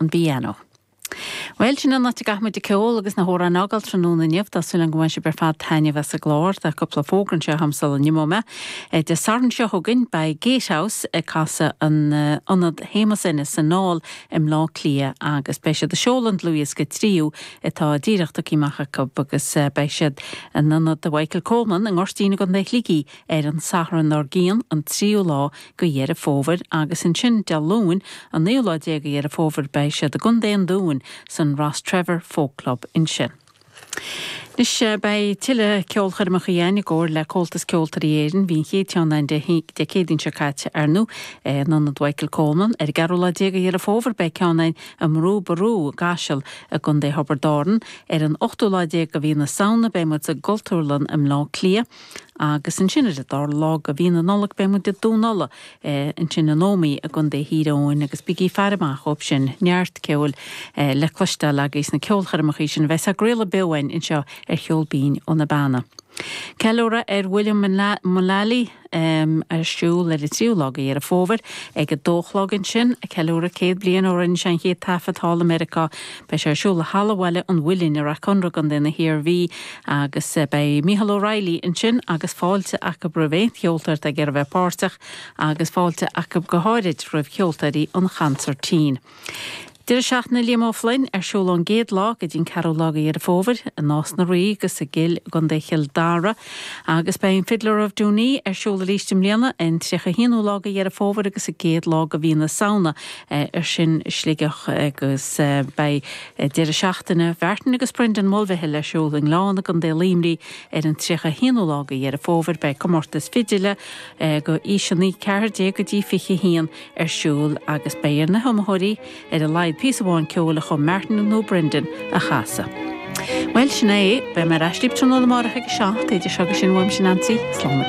an bpianó. Bhuel, sin an áit a gcaithfimid an ceol agus na hamhráin a fhágáil tráthnóna inniu. Tá súil agam gur bhain sibh ar fad taitneamh as an gclár. Tá cúpla fógra anseo agam sula n-imeoidh mé. Dé Sathairn seo chugainn beidh Gatehouse ag casadh in Ionad Shéamus Ennis san Aill i mBleá Cliath agus beidh siad ag seoladh an dlúthdhiosca Tríú atá díreach tugtha amach acu agus beidh siad in Ionad Mhichael Coleman i nGoirtín i gContae Shligigh ar an Satharn dár gcionn, an 3ú lá. de Dheireadh Fómhair agus ansin Dé Luain an naoú lá déag de Dheireadh Fómhair beidh siad i gContae an Dúin san Rostrevor Folk Club ansin. Anois beidh tuilleadh ceolchoirmeacha a'inn i gcomhar le Comhaltas Ceoltóirí Éireann, bhí an chéad cheann a'inn Dé Dé Céadaoin seo caite ar ndóigh in Ionad Mhichael Coleman. Ar an gceathrú lá déag de Dheireadh Fómhair beidh ceann a'inn i mBrú Ború i gCaiseal i gContae Thiobraid Árann. Ar an ochtú lá déag de Mhí na Samhna beidh muid sa gCultúrlann i mBleá Cliath. Agus ansin ar an dara lá de mhí na Nollag beidh muid i Dún Uladh, eh ansin in Ómaigh i gContae Thír Eoghain agus bígí ag faire amach dhóibh sin, neart ceoil eh le cloisteáil agaibh sna ceolchoirmeacha sin a bheas á gcraoladh beo a'inn anseo ar Cheol Binn ó na Beanna. Ceiliúradh ar William Mullally em ar siúl ar an tríú lá de Dheireadh Fómhair ag a dó a chlog ansin, ceiliúradh céad bliain ó rinne sé an chéad taifead thall i Meiriceá, Beidh sé ar siúl i Halla Bhaile an Mhuilinn i Rathconrath i gContae na hIarmhí agus beidh Micheál Ó Raghallaigh ansin agus fáilte acu roimh aon cheoltóir atá ag iarraidh bheith páirteach agus fáilte acu go háirid roimh cheoltóirí an chonsairtín. Deireadh Seachtaine Liam Ó Floinn ar siúl ón gcéad lá go dtí an ceathrú lá de Dheireadh Fómhair i Nás na Rí agus i gCill i gContae Chill Dara agus beidh an Fiddler of Dooney ar siúl aríst i mbliana an 31ú lá de Dheireadh Fómhair agus an gcéad lá de mhí na Samhna Ar sin Sligeach agus beidh deireadh seachtaine Mhartin agus Brendan Mulvihill ar siúl i nGleann i gContae Luimní ar an 31ú lá de Dheireadh Fómhair. Beidh comórtas fidile do aoiseanna 14 go dtí 21 ar siúl agus beidh ar na hiomaitheoirí ar a laghad píosa amháin ceoil a chum Martin nó Brendan a chasadh. Bhuel, sin é é. Beidh mé ar ais libh tráthnóna amárach ag a seacht. Idir seo agus sin, uaimse Neansaí, slán agus